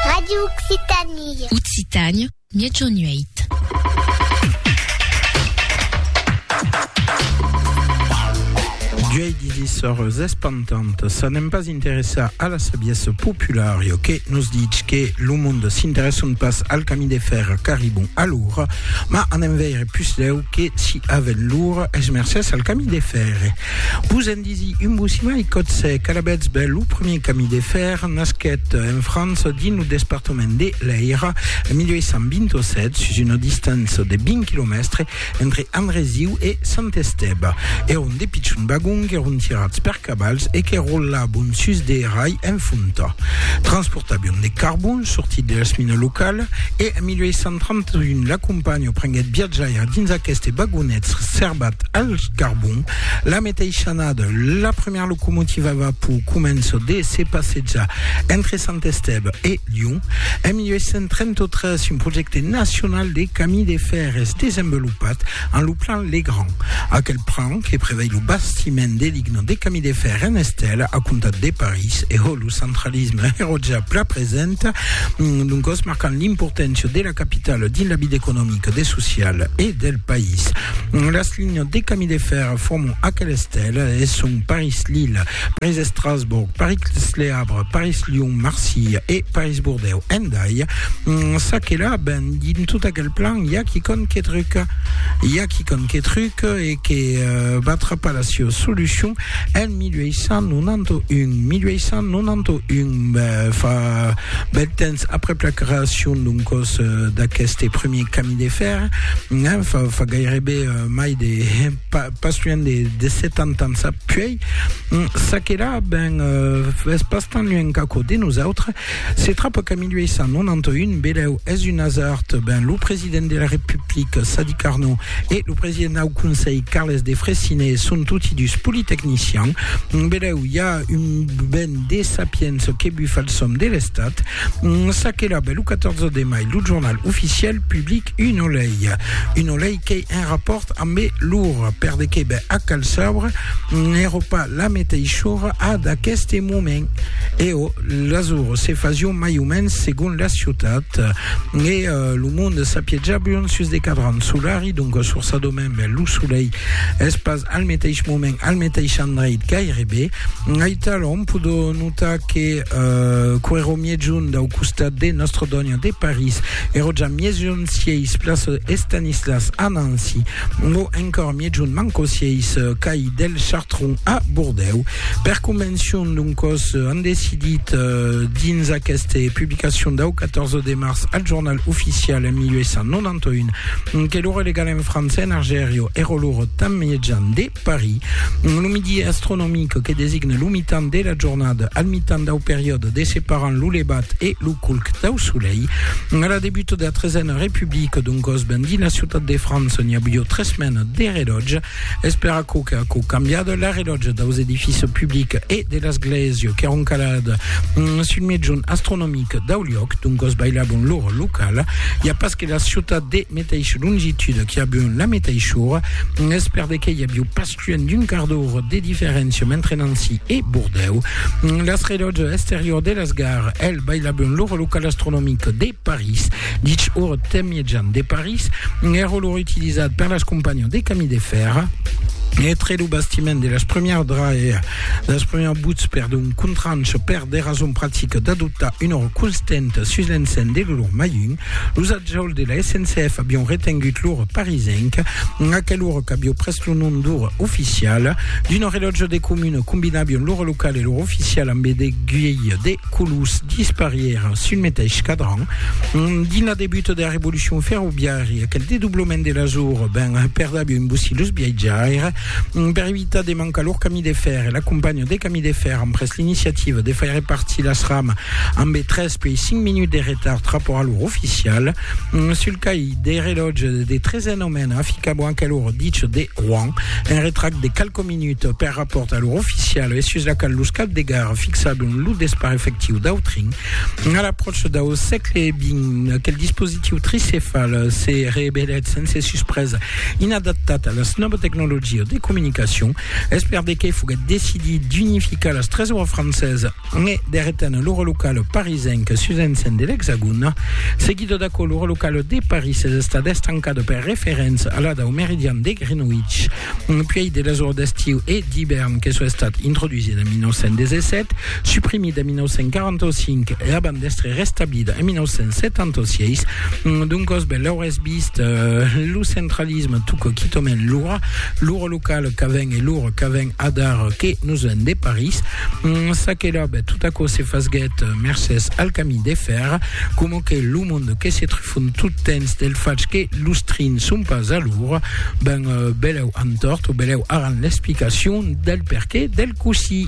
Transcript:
Radio Occitanie. Occitània, Miègjorn 8. Duei disissors espantant, ça n'aime pas interessar a la sabiesse populare que nous dit que le monde s'intéresse pas al camí de fer qu'arribon a l'our, ma en enveire plus leu que si aven l'our es mercès al camí de fer. Vos en disi un bocimalh còth sec, alavetz ben lo premier camin de fèr, nasquèt en França dins lo despartament de l'Èira en 1827 sus una distança de 20 quilomèstre entre Andresiu e Sant Estèba. Èron de pichons vagons qu'èron tirats per cavals e que rolabon sus de rai en fonta. Transportabion de carbon sortit de las minas localas e en 1831 la companhiá Antonio prenguèt viatjaire dins aqueste vagonets serbat al carbon. La meteisha annada, la premièra locomotiva a vapor comença de se passejar entre Sant Estève e Lion. En 1833, un projècte nacional de camí de fèr es desenvelopat en lo plan Legrand. Aquel plan, que prevei lo bastiment de ligna de camí de fèr en estèla a comptat de París e Hollywood, centralisme ero ja pla present, doncos marcant l'importància de la capitala dins la vida economica, de social e del país. Las linhas de camí de fèrre forman aquel estel e son Paris-Lille, Paris-Estrasborg, Paris-Le Havre, Paris-Lyon, Marsilha e Paris-Bordèu. Endai, ça que la ben dins tot aquel plan i a quicòm que truca. I a quicòm que truca e que va trapar la siá solucion en 1891, 1891, fa bèl temps aprèp la creacion d'un còs d'aqueste premier camin de fer, fa gairebe mai de, pas luènh de 70 ans apuèi, çaquelà, ben, es pas tan luènh qu'aquò de nosautres, Se trapa qu'en 1891, Belèu es un asard, ben lo president de la Republica, Sadi Carnot, e lo president dau Conselh, Carles de Freycinet, son toti dus politecnicians. Belèu i a un ben de sapiença que bufa el som de l'Estat. Çaquelà, ben lo 14 de mai, lo jornal oficial public una lei, una lei Qu'ei un rapòrt ambe l'or, per de qué? Ben, ac cal sabre, n'èro pas la meteishora ad aqueste moment. Eo, l'azur se fasion mai o mens segon la ciutat, e lo monde s'apietjabion sus de cadrans solari, donc sur sa domaine, ben, lo solei es pas al meteish moment, al meteish endreit gairebe. Aitalòm, podó notar que que'ro mièjun dau costat de Nostre Dònha de París, Eroja miejon sieis place Estanislas a Nancy, o encor miejon manco sieis cai del Chartron a Bordèu. Per convencion d'un còs an decidit dins aqueste publicacion dau 14 de març al Jornal Oficial en 1891 que lo relegalen francés en Argerio ero lor tan miejan de Paris. Lo midi astronomic que designa lo mitan de la jornada al mitan dau periòde de separant lo levat e lo culc dau solei. A la debut de la tresena republica, d'un còs ben dins la ciutat de França, n'hi avió tres mena de relòtge. Es per aquò que aquò cambiat la relòtge daus edificis publics e de l'esglèsia qu'èron calats sul mejun astronomic dau liòc, d'un còs bailabon l'ora locala. I a pas e la ciutat de meteis longitude qui avion la meteis ora, es per de que i aviu pasquen d'un quart d'ora de diferéncia mentre Nancy e Bordèu. Las relòtge exterior de las gares, el bailavion l'ora local astronomic de París, dich ora temijan de París, èra l'ora utilizat per las companhias de camí de fèrra, Etre lo bastiment de las premières draes, las premières buts per d'un contranche per de rason practica d'adoptar una hora constanta sus l'encent de l'olor majun, Los atjòls de la SNCF avion retengut l'ora parisenca, aquel ora qu'avió pres lo nom d'ora oficiala, d'una relòtja de comuna, combinavion l'ora locala e l'ora oficiala amb de guielhs de colors disparièra sul meteis cadran. Dins la debuta de la revolucion ferroviària, aquel dedoblament de las oras ben perdavió un bocí los viatjaires. Per evitar de mancar lor camí de fèrre, la companhiá de camí de fèrre amb pres l'iniciativa de faire partir las ramas amb tres Puèi 5 minuts de retard trapora l'ora oficial. Mm, sul caí de relòtge de 13 nomena fica bon que l'ora ditge de Rouen. Un retract de calco minuts per rapport a l'ora oficial e sus la cal los cap de gara fixabon lo despar efectiu d'Autrin. A l'apròche dau sègle XX, quel dispositiu tricefal se revelèt sense suspresa inadaptat a las nòva tecnologia de comunicacion. Es per de qué foguèt decidit d'unificar las tres oras francesa Me derretan lor local parisenc sus encen de l'Exagon. Seguido d'aquò, lor local de Paris es estat estancat per referents a la dau meridian de Greenwich. Puèi de las ors d'estiu e d'ivèrn que soi estat introdusit en 1917, suprimit en 1945 e abans d'èstre restablit en 1976, doncòs, ben, l'aurès vist, lo centralisme tuc quitament lor Lo local qu'avèn e lor qu'avèn adar que nos en de París. Mm, ça que là, ben, tout aquò se fasguèt mercès al camin de fer, coma que lo monde que se trifon tot temps del fach que los trins son pas a lor, ben, beleu antòrt o beleu aran l'explicacion del perqué del cossí.